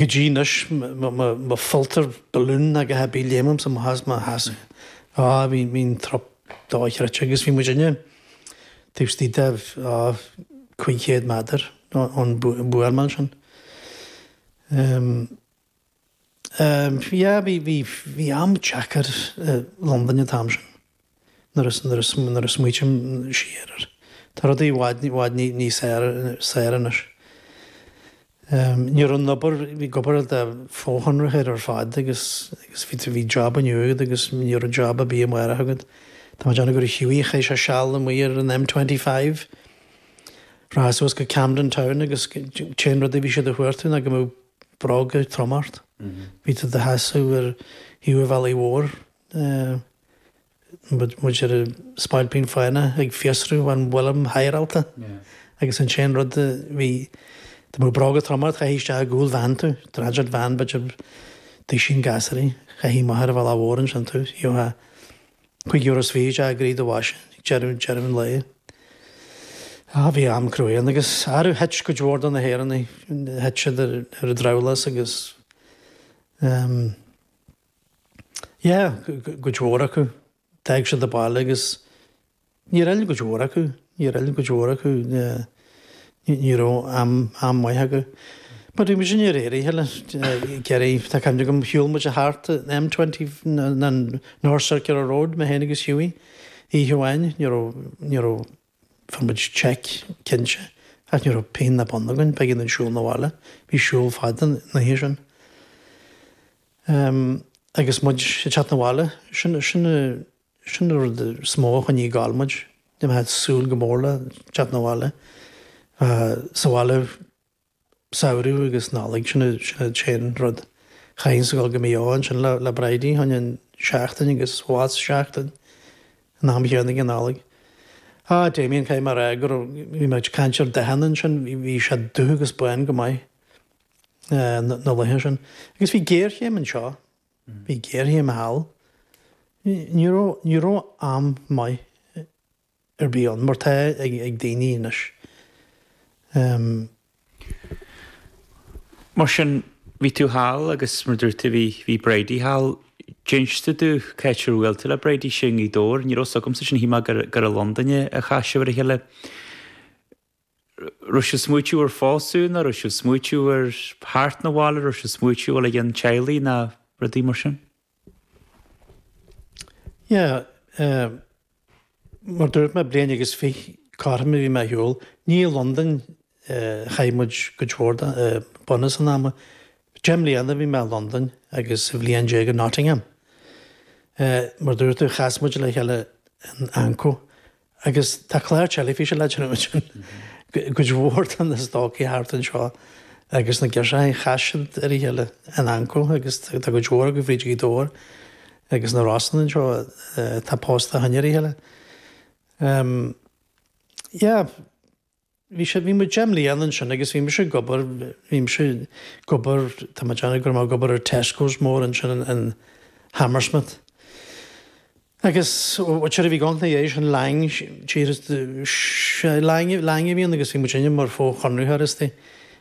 go dtí anois má pholltar balún ag ithe bí léimimsa mo sheas mo sheasamh bhí bhí'n trup dochreidte agus bhí muidinne taobh istigh de á cúig chéad méadar ón bhuama ansin ehm ehm yeah bhí bhí bhí am deacair i Londain an t-am sin. nuair a smaoitim siar air. Tá rudaí i bhfad, i bhfad níos fearr anois. Ní raibh an obair, ag obair do fhochonraitheoirí ar fad agus bhí job inniu agat agus ní raibh job ar bith amárach agat. Tá mé ag déanamh gur Hughie, chaith sé seal amuigh ar an M25, rachfá suas go Camden Town agus an t-aon rud a bhí siad ag cuartú ná go mbeadh bróga troma ort. Bhí tú i do sheasamh ar thaobh an bhealaigh mhóir. mar an spailpín fánach ag fiosrú an bhfuilim hírálta agus an t-aon rud bhí dá mbeadh bróga troma ort chaithfí isteach i gcúl veain tú, transit van b'fhéidir duisín gasúraí, chaithfí amach ar an bhealach mhór ansin tú gheofá cúig euro is fiche isteach i gcroí do bhoise ag deireadh deireadh an lae. Á bhí am cruaidh ann agus faraor thit cuid mhór de na hÉireannaigh thit siad ar an drabhlás agus ehm. Yeah, cuid mhór acu, d'fhág siad an baile agus níor fhill cuid mhór acu, níor fhill cuid mhór acu, ní raibh am maith acu. But bhí mise níor éirigh heller, Gerry, tá cuimhne agam shiúl muid thart an M20 an North Circular Road, mé féin agus Hughie, oíche amháin, ní raibh, ní raibh, Fuair muid seic, cinnte, ach ní raibh pingin ná bonn againn. B'éigean dúinn siúl na bhaile. Bhí siúl fada na dhiaidh sin. Agus muid ag teacht na bhaile, sin an rud is mó a choinnigh ag gabháil muid. Bhí muid ag súil go mór le teacht na bhaile. Bheith sa bhaile. Samhradh agus Nollaig, sin an t-aon rud. Chaithfinnse gabháil go Maigh Eo ansin le Bridie, chaithinn seachtain agus abhus seachtain an am chéanna ag an Nollaig. Á, Damien, caithfidh mé a rá go raibh, bhí mé ag caint ar dathanna ansin, bhí sé dubh agus bán go maith na laethe sin. Agus bhí géarchéim anseo, bhí géarchéim thall. Ní raibh am maith ar bith ann mar atá ag daoine anois. Mar sin, bhí tú thall agus mar dúirt tú, bhí Bridie thall. D'inis tú domh c'áit ar bhuail tú le Bridie, sin i nGaoth Dobhair? Ní raibh fhios agamsa sin, shíl mé gur i Londain a chas sibh ar a chéile. raibh sibh smaoitiú ar phósadh ná raibh sibh smaoitiú ar theacht na bhaile raibh sibh smaoitiú dhul i gceann teaghlaigh ná rudaí mar sin? Yeah eh mar dúirt mé bliain agus fiche cothrom a bhí mé ar shiúl ní i Londain eh chaith muid cuid mhór de eh bunús an ama deich mbliana a bhí mé i Londain agus aon bhliain déag i Nottingham eh mar dúirt tú chas muid le chéile in Anco Agus tá clár teilifíse le déanamh ansin. Cuid mhór de na stócaigh thart anseo agus na girseachaí chas siad ar a chéile in Anco agus tá cuid mhór acu fríd Ghaoth Dobhair agus na Rosann anseo atá pósta ó shin ar a chéile. Yeah. bhí sé, bhí muid deich mbliana ansin agus bhí mise ag obair, bhí mise ag obair, tá mé ag déanamh go raibh mé, ag obair ar Tesco's mór ansin in Hammersmith. Agus tseoraí a bhí ann na dhiaidh sin, Laing, tír, sea, Laing, Laing a bhí ann agus bhí muidinne mar fho-chonraitheoirí istigh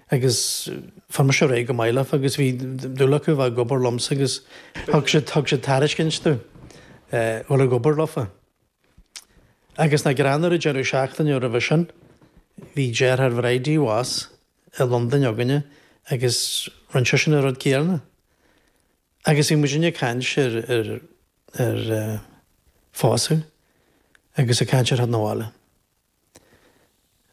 agus fuair mise ar aghaidh go maith leofa agus bhí dúil acu a bheith ag obair liomsa agus thug siad, thug siad tairiscint domh dhul ag obair leofa. Agus nach greannmhar an deireadh seachtaine roimhe sin, bhí deartháir Bhridie abhus i Londain againne agus rinne seisean an rud céanna. Agus bhí muidinne ag caint ar, ar, ar eh, pósadh agus ag caint ar theacht na bhaile.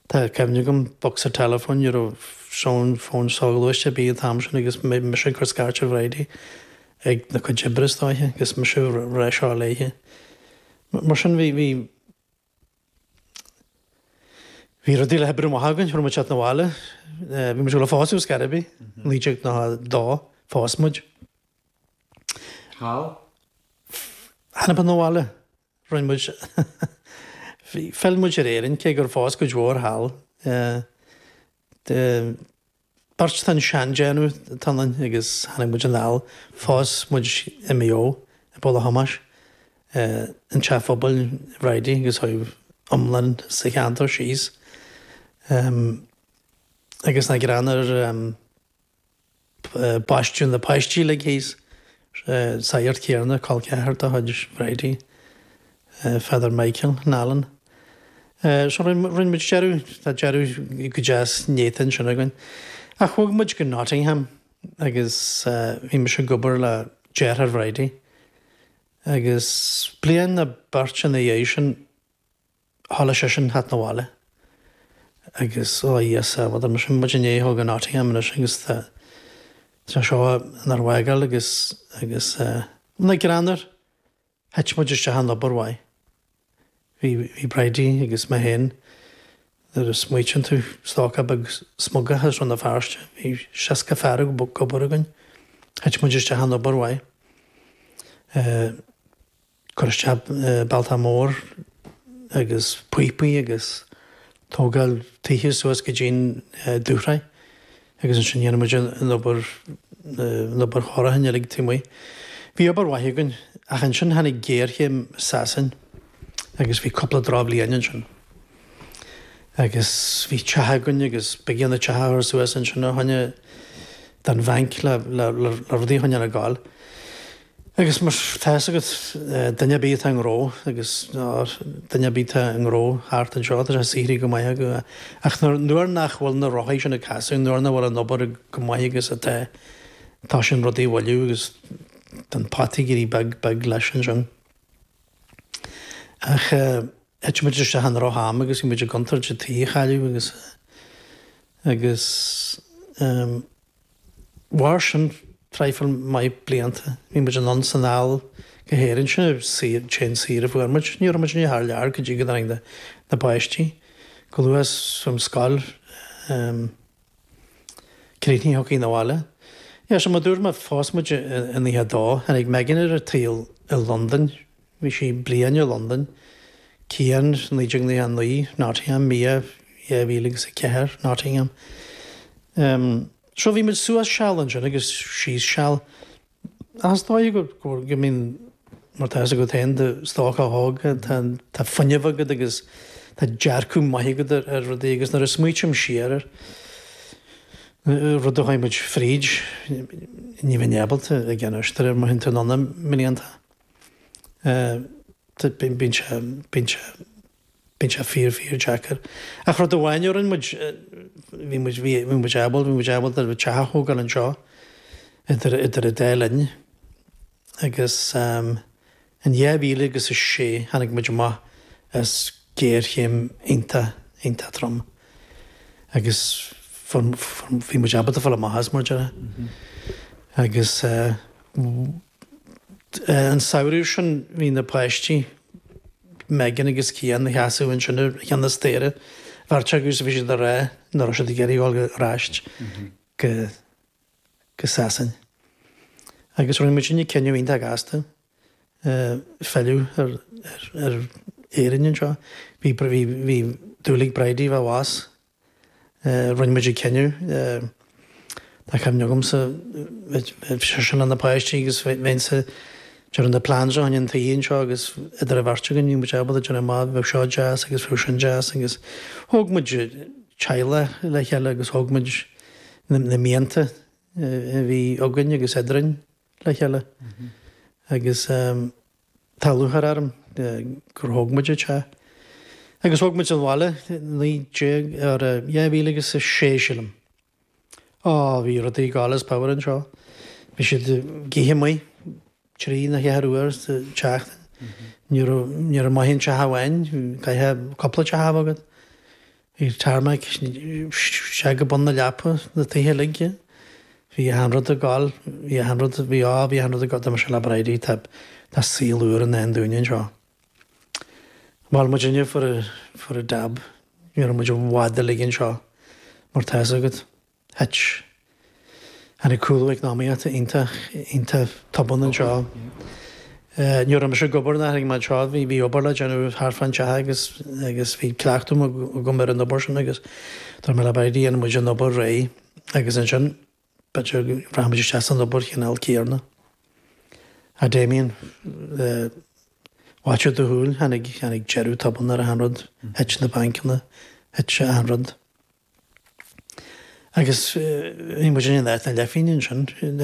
Tá cuimhne agam bocsa teileafóin, ní raibh fón fón soghluaiste ar bith an t-am sin agus mise ag cur scairt ar Bhridie ag a cuid oibre is dóiche agus mise ag rá seo léithe. Mar sin bhí bhí bhí rudaí le hoibriú amach againn, thabhair muid seat na bhaile, bhí muid le pósadh go Scaribbey, 1992 phós muid. Thall? Chan ea, na bhaile. Rinne muid. Phill muid ar Éirinn, cé gur phós cuid mhór thall. Beirt den tseandéanamh atá ionainn agus tháinig muid anall. Phós muid i Maigh Eo, i bPoll a' Thomáis, an teach pobail Bhridie agus chuaigh iomlán sa cheantar síos. Agus nach greannmhar. Baisteadh na páistí uilig leis an tsagart chéarna, col ceathar de chuid Bhridie, Father Michael Nallen. So rinne muid deireadh, tá deireadh go deas néata ansin againn. Ach bhog muid go Nottingham agus bhí mise ag obair le deartháir Bhridie. Agus bliain nó beirt ina dhiaidh sin. Tharla sé sin thart na bhaile agus ó a Íosa a dúirt muid i ndiaidh theacht go Nottingham anois agus tá sé seo inár bhfágáil agus agus nach greannmhar thit muid isteach in obair mhaith bhí bhí Bridie agus mé féin nuair a smaoitíonn tú stócach beag smugach as Rann na Feirste bhí seasca fear ag obair againn thit muid isteach in obair mhaith eh. Cur isteach bealtaí móra agus píopaí agus tógáil tithe suas go dtí'n dúshraith agus ansin dhéanadh muid an obair, an obair chóirithe uilig taobh amuigh. Bhí obair mhaith againn ach ansin tháinig géarchéim i Sasain agus bhí cúpla drochbhliain ansin agus bhí teach againn agus b'éigean an teach a chur suas ansin a choinne don bhanc le rudaí a choinneáil ag gabháil. Agus mar tá fhios agat duine ar bith atá i ngnó agus, nó duine ar bith atá i ngnó thart anseo, tá sé saothraithe go maith acu. Ach nuair nach bhfuil na rothaí sin ag casadh, nuair nach bhfuil an obair chomh maith agus atá, toisíonn rudaí a mhoilliú agus tá an pota ag éirí beag beag leis ansin. Ach thit muid isteach i ndrocham agus bhí muid i gcontúirt an tí a chailleadh agus, agus, mhair sin traidhfil maith blianta. Bhí muid anonn 's anall go hÉirinn, sin achan saoire a fuair muid. Ní raibh muid ariamh thar lear go dtí go dtáinig na páistí chomh luath 's an scoil ehm críochnaithe thiocfainn 'na bhaile. Yeah, so mar a dúirt mé, phós muid i nócha a dó, tháinig Megan ar an tsaol i Londain, Bhí sí bliain i Londain, Cian 1999, Nottingham, Mia 2004, Nottingham. Ehm, so bhí muid suas seal ansin agus síos seal. Ach is dóigh go, go, I mean, mar tá fhios agat féin, i do stócach óg, tá, tá fuinneamh agat agus tá dearcadh maith agat ar, ar rudaí agus nuair a smaoitím siar ar na rudaí a chuaigh muid fríd, ní bheinn ábalta a gcinn a scríobh, má théann tú anonn i mblianta. Bíonn sé, bíonn sé, bíonn sé fíor, fíor deacair. Ach rud amháin a rinn muid, bhí muid, bhí muid ábalta, bhí muid ábalta an teach a thógáil anseo idir, idir an dá linn. Agus in dhá mhíle agus a sé tháinig muid amach as géarchéim iontach, iontach trom. Agus fuair, fuair, bhí muid ábalta fáil amach as, mar a déarfá. Agus. An samhradh sin bhí na páistí, Megan agus Cian, ina seasamh ansin ar cheann an staighre, an bheirt acu agus bhí siad ag rá nach raibh siad ag iarraidh dul ar ais go Sasain. Agus rinne mise an cinneadh iontach gasta filleadh ar Éirinn anseo. Bhí dúil ag Bridie bheith abhus Rinne muid an cinneadh, tá cuimhne agamsa, bhí seisean leis na páistí agus bheinnse ag dearadh na plans fá choinne an tí anseo agus idir an bheirt againn bhí muid ábalta a dhéanamh amach bheadh seo deas agus bheadh sin deas agus thóg muid teaghlach le chéile agus thóg muid na mianta a bhí againn agus eadrainn le chéile agus Tá lúcháir orm gur thóg muid an teach agus thóg muid an bhaile 19 ar 2006 sílim. Á, bhí rudaí ag gabháil as pabhar anseo. Bhí siad ag ithe amuigh trí nó cheathair uair sa tseachtain. Ní raibh maith in aon teach amháin, caithfidh cupla teach a bheith agat. Bhí tarmac isteach go bun na leapa sna tithe uilig. Bhí achan rud ag gabháil. Bhí achan rud, bhí á, bhí achan rud ag gabháil. Dúirt mise le Bridie, tá tá saol úr i ndán dúinn anseo. Mhol muid inniu for a for a dab. Ní raibh muid i bhfad uilig anseo mar tá's agat. Thit. Tháinig cúlú eacnamaíochta iontach, iontach tobann anseo. Ní raibh mise ag obair nuair a tháinig mé anseo, bhí, bhí obair le déanamh thart fán teach agus, agus bhí cleachtadh agam ar an obair sin agus dúirt mé le Bridie, dhéanfaidh muid an obair réidh agus ansin b'fhéidir go rachaimid isteach san obair chineál céanna. A Damien, i bhfaiteadh do shúil, tháinig, tháinig deireadh tobann ar achan rud, thit na bancanna, thit achan rud. Agus ní muid in éineacht le Finín ansin.